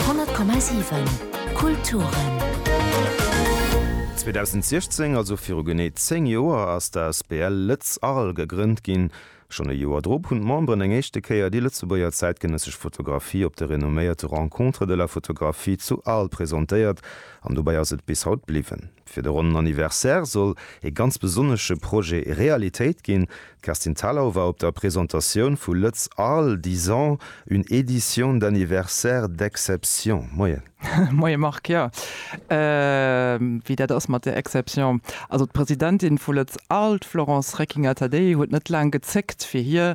100,7 Kulturen. 2016, also viru genee 10 Joer, ass d'Asbl Lëtz Arles gegrënnt ginn. Schonn e Joer drop hunn d'Memberen eng éischte Kéier déi Lëtzebuerger zäitgenëssesch Fotografie op de renomméierte Rencontres de la photographie zu Arles presentéiert an dobäi ass et bis haut bliwwen. Fir de ronnen Anniversaire soll ee ganz besonnesche Projet Realitéit ginn. D'Kerstin Thalau war op der Presentatioun vu Lëtz Arles, dix ans, une édition d'anniversaire d'exception. Moien. Moie Marc, jo wéi dat ass mat der Exception. Also d'Presidentin vu Lëtz Arles, d'Florence Reckinger-Tadei huet net laang gezéckt fir hir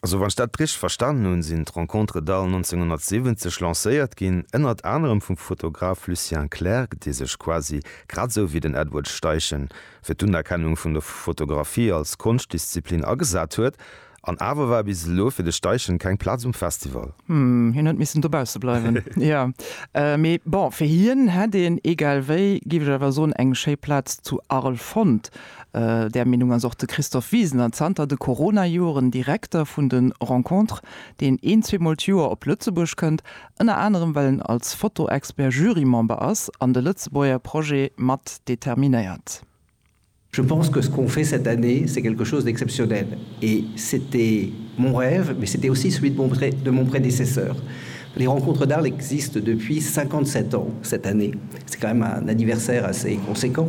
Also wann ech dat richteg verstanen hunn, sinn d'Rencontres d'Al 1970 lancéiert ginn, ënnert anerem vum Fotograf Lucien Clerc, dee sech quasi grad esou wéi den Edward Steichen fir d'Unerkennung vun der Fotografie als Konschtdisziplin agesat huet. An awer war bis elo fir de Steichen keng Plaz um Festival. Hm, hien huet missen dobausse bleiwen, jo. Mee bon, fir hien hätt een, egal wéi, géif ech awer soen, eng schéi Plaz zu Arles fonnt. Där Meenung ass och de Christophe Wisener, zanter de Corona-Joren Direkter vun de Rencontres, deen een, zweemol d'Joer op Lëtzebuerg kënnt, ënner anerem well en als Foto-Expert Jury-Member ass an de Lëtzebuerger Projet mat determinéiert. Je pense que ce qu'on fait cette année, c'est quelque chose d'exceptionnel et c'était mon rêve, mais c'était aussi celui de mon prédécesseur. Les Rencontres d'Arles existent depuis 57 ans cette année, c'est quand même un anniversaire assez conséquent.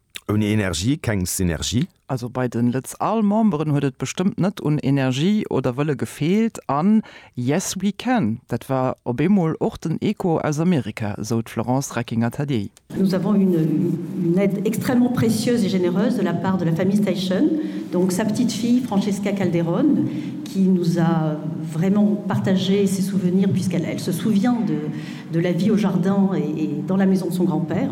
Ouni Energie keng Synergie. Also bei den Lëtz Al Memberen huet et bestëmmt net un Energie oder Wëlle gefeelt an Yes we can, dat war op eemol och den Echo aus Amerika, sou d'Florence Reckinger-Tadier. Nous avons eu une aide extrêmement précieuse et généreuse de la part de la famille Steichen, donc sa petite fille Francesca Calderón qui nous a vraiment partagé ses souvenirs puisqu'elle se souvient de la vie au jardin et dans la maison de son grand-père.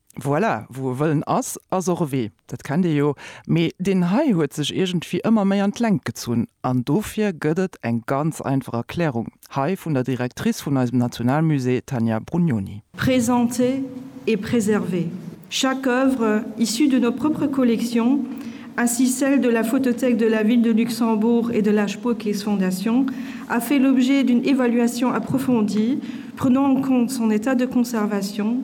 Voilà, wou e Wëllen ass, ass och e Wee, dat kennt ee jo. Mee deen hei huet sech iergendwéi ëmmer méi an d'Längt gezunn. An dofir gëtt et eng ganz einfach Erklärung hei vun der Directrice vun eisem Nationalmusée, Tania Brugnoni. Présenter et préserver chaque œuvre issue de nos propres collections, ainsi celle de la Photothèque de la Ville de Luxembourg et de la Spuerkees-Fondation, a fait l'objet d'une évaluation approfondie prenant en compte son état de conservation,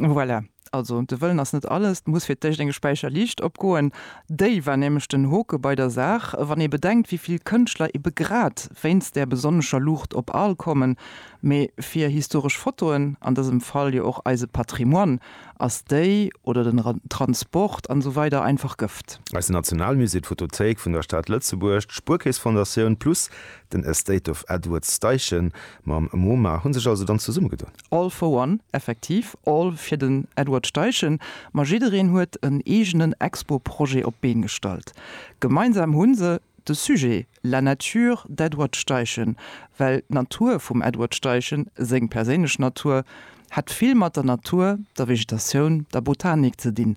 Voilà. Also de Wëllen ass net alles, et muss fir d'éischt eng Späicher Liicht opgoen. Déi war nämlech den Hoke bei der Saach, wann ee bedenkt wéi vill Kënschtler ebe grad wéinst där besonnescher Luucht op Arles kommen. Mee fir historesch Fotoen, an dësem Fall jo och eise Patrimoine, ass déi, oder den Transport an esou weider einfach Gëft. Eise Nationalmusée, d'Photothéik vun der Stad Lëtzebuerg, d'Spuerkeess-Fondatioun plus den Estate of Edward Steichen mam Moma hu sech also dann zesummegedoen. All for one, effektiv all fir den Edward Steichen, ma jiddereen huet en eegenen Expo-Projet op d'Been gestallt. Gemeinsam hu se de Sujet La nature d'Edward Steichen, well d'Natur vum Edward Steichen, seng perséinlech Natur, hat vill mat der Natur, der Vegetatioun, der Botanik ze dinn.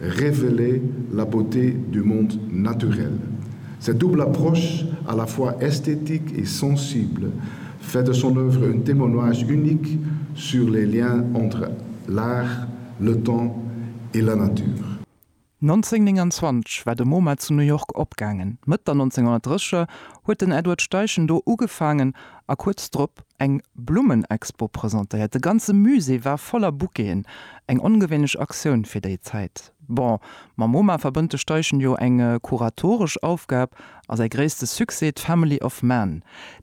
Révéler la beauté du monde naturel. Cette double approche à la fois esthétique et sensible fait de son œuvre un témoignage unique sur les liens entre l'art, le temps et la nature. 1929 war de MoMa zu New York opgaangen. D'Mëtt der 1930er huet den Edward Steichen do ugefaangen a kuerz drop eng Blummenexpo presentéiert. De ganze Musée war voller Bouqueten, eng ongewéinlech Aktioun fir déi Zäit. Bon, mam MoMa verbënnt de Steichen jo eng kuratoresch Aufgab a säi gréisste Succès, d'Family of Man,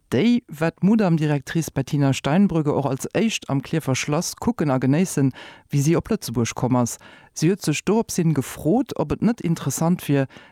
déi wat d'Mudam Directrice Bettina Steinbrügge och als éischt am Klierfer Schlass kucken a genéissen, wéi si op Lëtzebuerg komm ass. Si huet sech doropshin gefrot, ob et net interessant wier,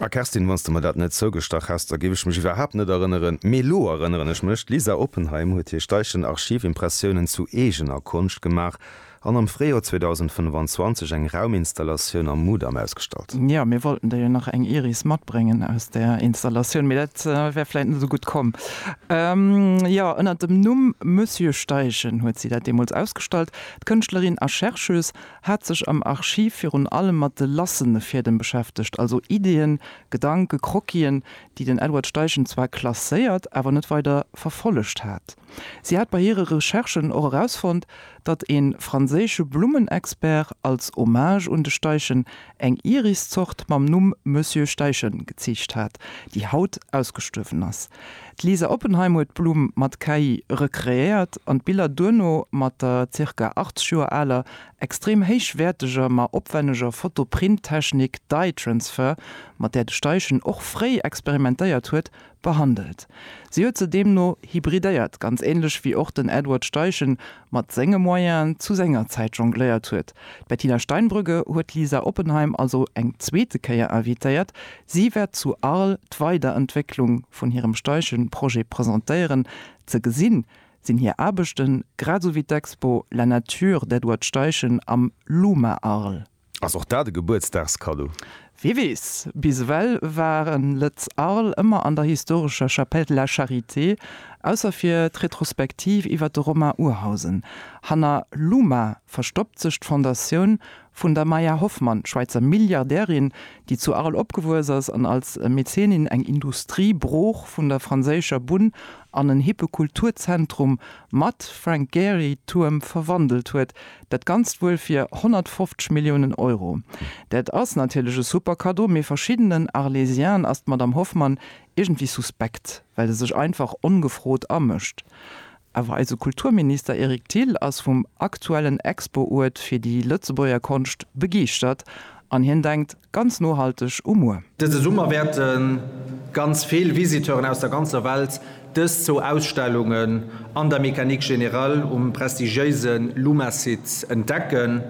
A Kerstin, wann s de mer dat net zougestach häss, da géif ech mech iwwerhaapt net erënneren. Mee elo erënneren ech mech, d'Lisa Oppenheim huet hir Steichen Archivimpressiounen zu eegener Konscht gemaach an am Fréijoer 2025 eng Rauminstallatioun am Mudam ausgestallt. Jo, mir wollten der jo nach eng Iris matbréngen aus där Installatioun, mee dat wär vläit net esou gutt komm. Jo, ënner dem Numm Monsieur Steichen huet si dat deemools ausgestallt. D'Kënschtlerin a Chercheuse hat sech am Archiv virun allem mat de lassene Fiedem beschäftegt, also Ideeën, Gedanken, Croquisen, déi den Edward Steichen zwar klasséiert, awer net weider verfollegt hat. Si hat bei hire Recherchen och erausfonnt, datt ee franséische Blummenexpert als Hommage un de Steichen eng Iriszort mam Numm Monsieur Steichen geziicht hat, déi haut ausgestuerwen ass. D'Lisa Oppenheim huet d'Blumm mat KI recreéiert an d'Biller duerno mat der zirka 80 Joer aler, extrem héichwäerteger, ma opwenneger Foto-Print-Technik Dye Transfer, mat där de Steichen och fréi experimentéiert huet, behandelt. Si huet se deemno hybridéiert, ganz änlech wéi och den Edward Steichen mat senge Moyenen zu senger Zäit jongléiert huet. D'Bettina Steinbrügge huet d'Lisa Oppenheim also eng zweete Kéier invitéiert. Si wäert zu Arles d'Weiderentwécklung vun hirem Steichen-Projet presentéieren. Ze gesinn sinn hir Aarbechten grad esou wéi d'Expo La nature d'Edward Steichen am Luma Arles. Ass och dat e Gebuertsdagskaddo? Wie weess. Bis ewell waren Lëtz Arles ëmmer an der historescher Chapelle de la Charité, ausser fir d'Retrospektiv iwwer de Romain Urhausen. Hanner Luma verstoppt sech d'Fondatioun vun der Maya Hoffmann, Schwäizer Milliardärin, déi zu Arles opgewuess ass an als Mäzenin eng Industriebrooch vun der franséischer Bunn an en hippe Kulturzentrum mat Frank-Gehry-Tuerm verwandelt huet, Dat Ganzt wuel fir 150 Milliounen Euro. Dat ass natierlech e super Kaddo, mee verschiddenen Arlésien'en ass d'Madame Hoffmann iergendwéi suspekt, well se sech einfach ongefrot amëscht. Awer eise Kulturminister Eric Thill ass vum aktuellen Expo-Uert fir déi Lëtzebuerger Konscht begeeschtert an hien denkt, Ganz nohalteg um Muer. Dëse Summer wäerte ganz vill Visiteuren aus der ganzer Welt dës zwou Ausstellungen an der Mécanique Générale um prestigiéise Luma-Site entdecken.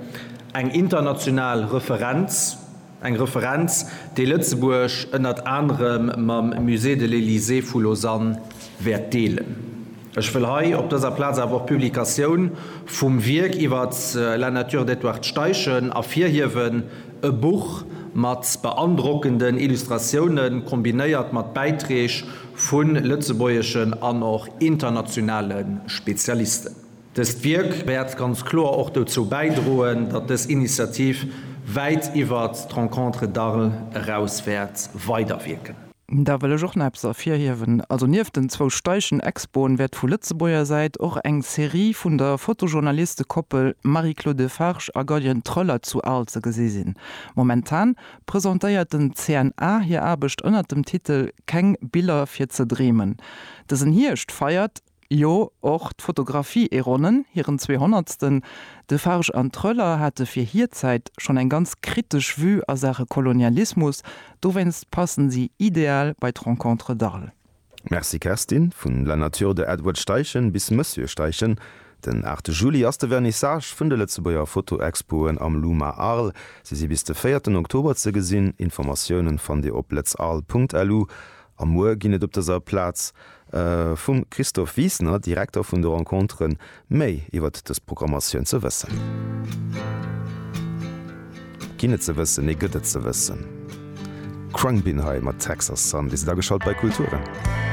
Eng international Referenz, eng Referenz, déi Lëtzebuerg ënnert anerem mam Musée de l'Elysée vu Lausanne wäert deelen. Ech wëll hei op dëser Plaz awer och d'Publikatioun vum Wierk iwwer La nature d'Edward Steichen ervirhiewen, e Buch mat beandrockenden Illustratiounen, kombinéiert mat Bäitreeg vu lëtzebuergeschen an och internationale Spezialisten. Dëst Wierk wäert ganz kloer och dozou bäidroen, datt dës Initiativ wäit iwwert d'Rencontres d'Arles eraus wäert weiderwierken. Da wëll ech och nach eppes ervirhiewen. Also nieft den zwou Steichen-Expoen wäert vu Lëtzebuerger Säit och eng Serie vun der Fotojournalistekoppel Marie-Claude Defarge a Gaudian Troeller zu Arles ze gesi sinn. Momentan presentéiert den CNA hir Aarbecht ënnert dem Titel Keng Biller fir ze dreemen. Dësen Hierscht feiert. Jo, och d'Fotografie e ronnen hiren Zweehonnertsten. Defarge an Tröller hate fir hir Zäit schonn eng ganz kritesch Vue a Saache Kolonialismus, dowéinst passen si ideal bei d'Rencontres d'Arles. Merci Kerstin, vun La Nature de Edward Steichen bis Monsieur Steichen, Den 8 Juli ass de Vernissage vun de Lëtzebuerger Fotoexpoen am Luma Arles. Se si bis de 4 Oktober ze gesinn. Informatiounen fannt Dir op lëtzarles.lu. A muer ginn et op dëser Plaz vum Christophe Wiesner, Direkter vun de Rencontere méi iwwert dës Programmatioun ze wëssen. Ginn et ze wëssen, nee gëtt et ze wëssen. Khruangbin hei mat Texas Sun. Dir sidd ageschalt bei Kulturen.